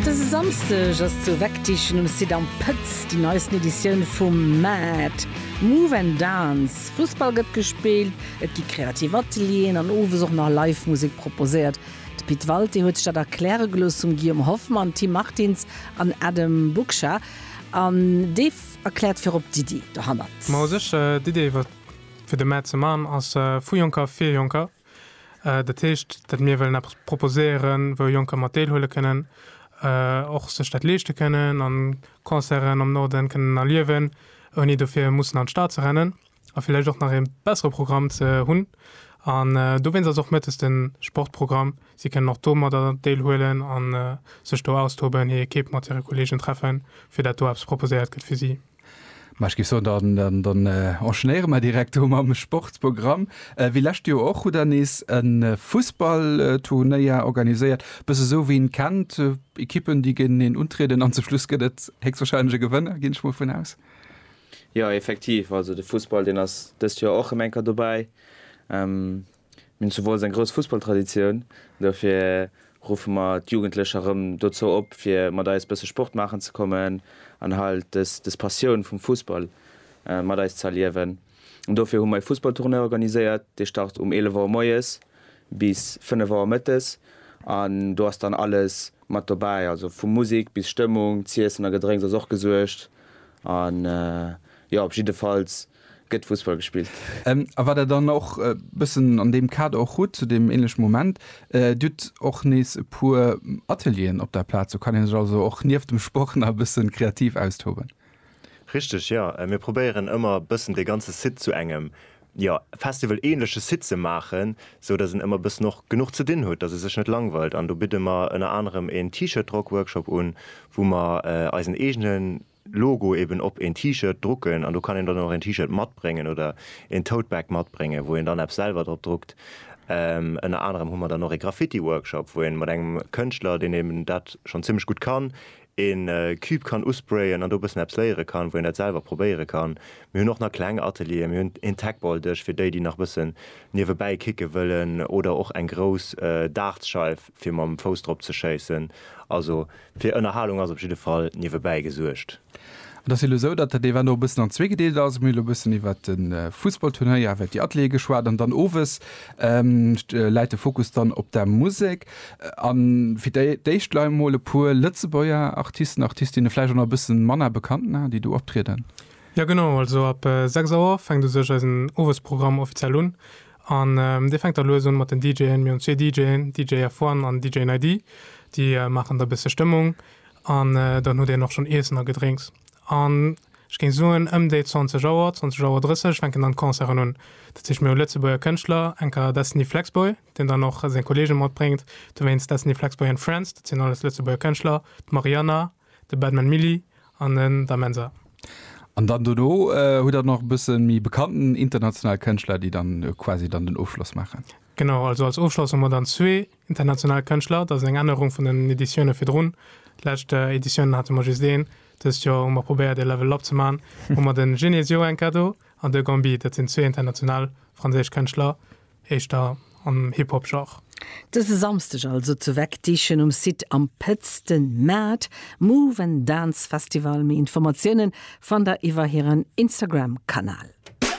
Dëse Samsdeg ass zu Wegdiechen um Site Am Pëtz déi neisten Editioun vum Mad. Move and Dance. Fussball gëtt gespillt, et gi kreativ Atelieren an owes och nach live Musek proposéiert. De Pit Walté huet sech dat erkläre gelooss vum Guillaume Hoffmann, Tim Martins an Adam Buksha. An dee erkläert virop d'Iddi dohannert. Mao sécher, d'Iddi iwwert fir de Mad ze man ass vu Jonker fir Jonker. Dat heescht, datt mir wëllen eppes proposéieren, wou Jonker mat deelhuele kënnen, och sech dat leeschte kënnen an Concerten am Norden kënnen erliewen, ouni dofir mussen an d'Stad ze rennen a villäicht och nach ee bessere Programm ze hunn. An dowéinst ass och mëttes de Sportprogramm. Si kënnen och domadder deelhuelen a sech do austoben, hir Ekipp mat hire Kolleegen treffen, fir dat do eppes proposéiert gëtt fir si. Ma ech géif soen, dann, dann enchaînéiere mer direkt do mam Sportsprogramm. Wéi lescht Joer och, hutt Der nees e Fussballturnéier organiséiert. Bësse esou, wéi een kennt, Ekippen, déi géinteneen untrieden an zum Schluss gëtt et héchstwahrscheinlech e Gewënner, ginn ech mol vun aus. Jo, effektiv. Also de Fussball, deen ass dëst Joer och erëm eng Kéier dobäi. Mir hunn zu Wolz eng grouss Fussballtraditioun. Dofir ruffe mer d'Jugendlecher erëm dozou op, fir mat eis bësse Sport maachen ze kommen an halt des Passioun vum Fussball mat eis ze erliewen. An dofir hu mer e Fussballtournoi organiséiert. Dee start um 11 Auer moies bis 5 Auer mëttes an do ass dann alles mat dobäi, also vu Musek bis Stëmmung. Z'iessen a Gedrénks ass och gesuergt an jo, op jiddefalls gëtt Fussball gespillt. A wat Der dann och e bëssen an deem Kader och hutt, zu deem änleche Moment, Dir hutt och nees e puer Atelieren op der Plaz. Do kann ee sech also och nieft dem Sport nach e bëssen kreativ austoben. Richteg, jo. Mir probéieren ëmmer e bëssen dee ganze Site zu engem, jo, Festival-änleche Site ze maachen, sou datt en ëmmer e bëssen och genuch ze dinn hutt, datt e sech net langweilt. An do bidde mer ënner anerem en T-Shirt-Drock-Workshop un, wou mer eisen eegenen Logo eben op een T-Shirt drucken an do kann een dann och een T-Shirt matbréngen oder een Tote Bag matbréngen, wou een dann eppes selwer drop druckt. Ënner anerem hu mer dann och ee Graffiti Workshop, wou een mat engem Kënschtler, deen eben dat schonn zimlech gutt kann, een Cube kann usprayen an do e bëssen eppes léiere kann, wou een dat selwer probéiere kann. Mir hunn och nach kleng Atelieren, mir hunn een Tagball Dësch fir déi, déi nach e bëssen niewebäi kicke wëllen oder och eng grouss Dartsscheif. fir mam Fouss drop ze schéissen. Also fir Ënnerhalung ass op jidde Fall niewebäi gesuergt. Et ass elo esou, datt dat Event och e bëssen an zwee gedeelt ass. Mir hu elo e bëssen iwwert de Fussballturnéier, iwwert déi Ateliere geschwat an dann owes läit de Fokus dann op der Musek. A fir d'éischt lei emol e puer Lëtzebuerger Artisten, Artistinne, vläicht och nach e bësse manner bekannt Namen, déi do optrieden. Jo genau, also ab 6 Auer fänkt u sech eisen Owesprogramm offiziell un. An dee fänkt da lues un mat den DJen. Mir hunn zwee DJen, DJ F-One an DJ Naydi. Déi maachen da e bësse Stëmmung an dann hutt een och schonn Iessen a Gedrénks. An ech géing soen, ëm déi 20 Auer, 20 Auer 30 fänken dann d'Concerten un. Dat heescht, mir hu Lëtzebuerger Kënschtler, enker Destiny Flexboy, deen dann och seng Kolleege matbréngt. Dowéinst Destiny Flexboy and Friends, dat sinn alles Lëtzebuerger Kënschtler, d'Mariana, De Batman Milly an en Da Mensa. An dann dono hutt der nach e bëssen méi bekannten international Kënschtler, déi dann quasi dann den Ofschloss maachen. Genau, also als Ofschloss hu mer dann zwee international Kënschtler. Dat ass eng Ännerung vun den Editioune virdrun. Lescht Editiounen hate mer just een. Dëst Joer hu mer probéiert e Level up ze maachen, hu mer de Genesio enka do an de Gambi. Dat sinn zwee international franséisch Kënschtler. éischter am Hip-Hop-Genre. Dëse Samsdeg also zu Wegdiechen um Site Am Pëtz den Mad Move and Dance Festival. Méi Informatiounen fannt der iwwer hiren Instagram-Kanal.